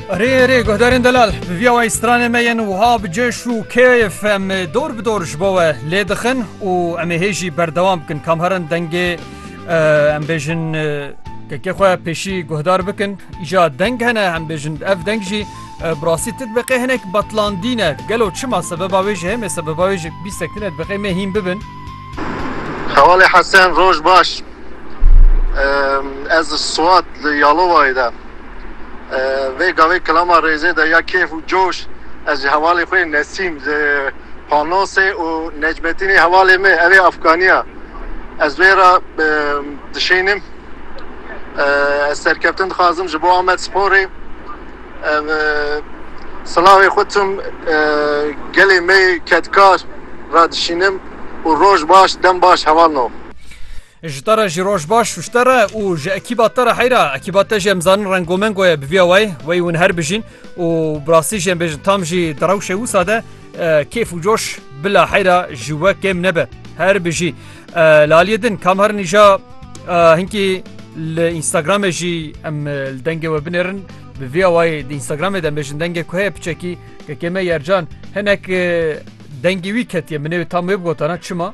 Erê erê guhdarên delal bi vîya wayî stranê me yên wiha bi cêş û kêf em dor bi dor ji bo we lê dixin û em ê hê jî berdewam bikin kam herin dengê em bêjin kekê xwe pêşî guhdar bikin îja deng hene em bêjin ev deng jî bi rastî ti dibeqê hinek betlandî ne gelo çima sebeba wê ji hemê sebeba wê ji bîstek tine dibeqê me hîn bibin Xewalê Hesen roj baş. Ez Suat li Yalovayê de. Vê gavê kilama rêzê de ya kêf û coş. Ez ji hevalê xwe Nesîm li Panosê û Necmetînê hevalê me ev ê Afganiya. Ez wê re dişênim. Ez serkeftin dixwazim ji bo Amedsporê. Silavê xwe tim gelê me yê kedkar re dişînim û roj baş dem baş heval no. Ji te re jî roj baş ji te re û ji ekîba te re heyra ekîba te jî em zanin rengomengo ye bi vîya wayê wey hûn her bijîn û bi rastî jî em bêjin tam jî di rewşê wisa de Kêf û coş bila heyra ji we kêm nebe. Her bijî. Laliyê din kamar nîja hinkî li Instagramê jî em li dengê we binêrin bi vî awayê di Instagramê de bêjin dengê ku heye piçekî ke kême yercan hinek dengê wî ketiye min ê tam wê bigotana çima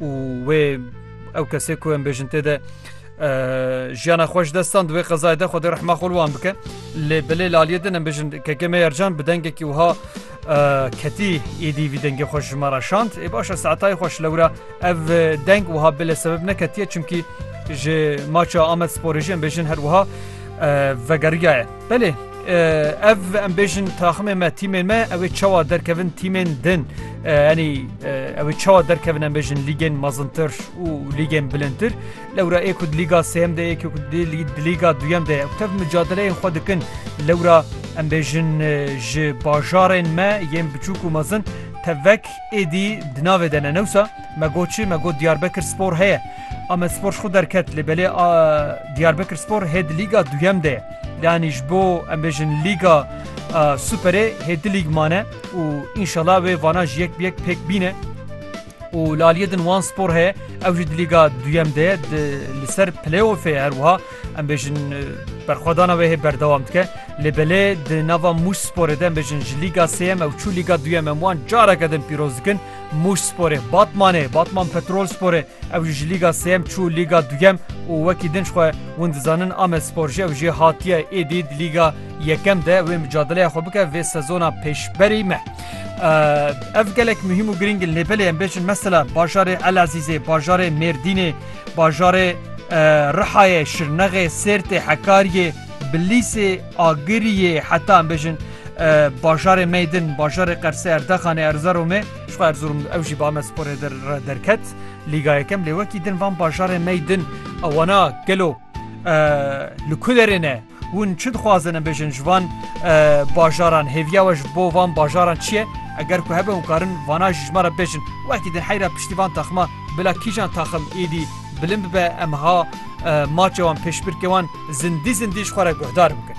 û wê ew kesê ku em bêjin tê de jiyana xweş destan di wê qezayê de xwedê rehma xol wan bike lê bilê laliyê din em bêjin keke me yercan bi dengekî wiha ketî êdî vî dengê xweş ji me re şand ê başa saetayê xweş lewra ev deng wiha bilê sebeb neketiye çimkî ji maça Amed sporêjiyên bêjin her wiha vegeriyaye. Belê ev em bêjin taximê me tîmên me ew ê çawa derkevin tîmên din enî ew ê çawa derkevin em bêjin lîgên mazintir û lîgên bilintir lewra ê ku lîga sêyem de yek lîga duyem de tev micadeleyên xwe dikin lewra em bêjin ji bajarên me yên biçûk û mezin tevek êdî di navê de ne newsa me goçi me got diyarbekir spor heye Amedspor ji xwe derket lê belê Diyarbekirspor hê di lîga duyem de ye. Yanî ji bo em bêjin lîga Superê hê di lîg mane û înşala wê vana ji yek bi yek pêk bîne. û li aliyê din wan spor heye ew jî di lîga duyem de li ser playoffê her wiha em bêjin berxwedana wê hê berdewam dike lê belê di nava mûş sporê de em bêjin ji lîga sêyem ew çû lîga duyem em wan careke din pîroz dikin Mûşsporê, Batmanê, Batman Petrolsporê, ew jî ji Lîga Sêyem çû Lîga Duyem û wekî din xwe hûn dizanin Amedspor jî ew jê hatiye êdî di Lîga Yekem de wê micadeleya xwe bike vê sezona pêşberî me. Ev gelek muhîm û girîng in lê belê em bêjin mesela bajarê Elezîzê, bajarê Mêrdînê, bajarê Rihayê, Şirnexê, Sêrtê, Hekariyê, Bi lîsê Agiriyê heta em bêjin bajarê Meydin, bajarê Qersê, Erdexanê, Erzeromê, ji xwe Erzurum ew jî bi Amesporê re derket Lîga Yekem lê wekî din van bajarê Meydin ew wana gelo li ku derê ne hûn çi dixwazin em bêjin ji van bajaran hêviya we ji bo van bajaran çi ye eger ku hebe hûn karin vana jî ji me re bêjin wekî din heyra piştî van taxima bila kîjan taxim êdî Bilind bibe em ha maçê wan pêşbirkê wan zindî zindî ji xwe re guhdar bikin.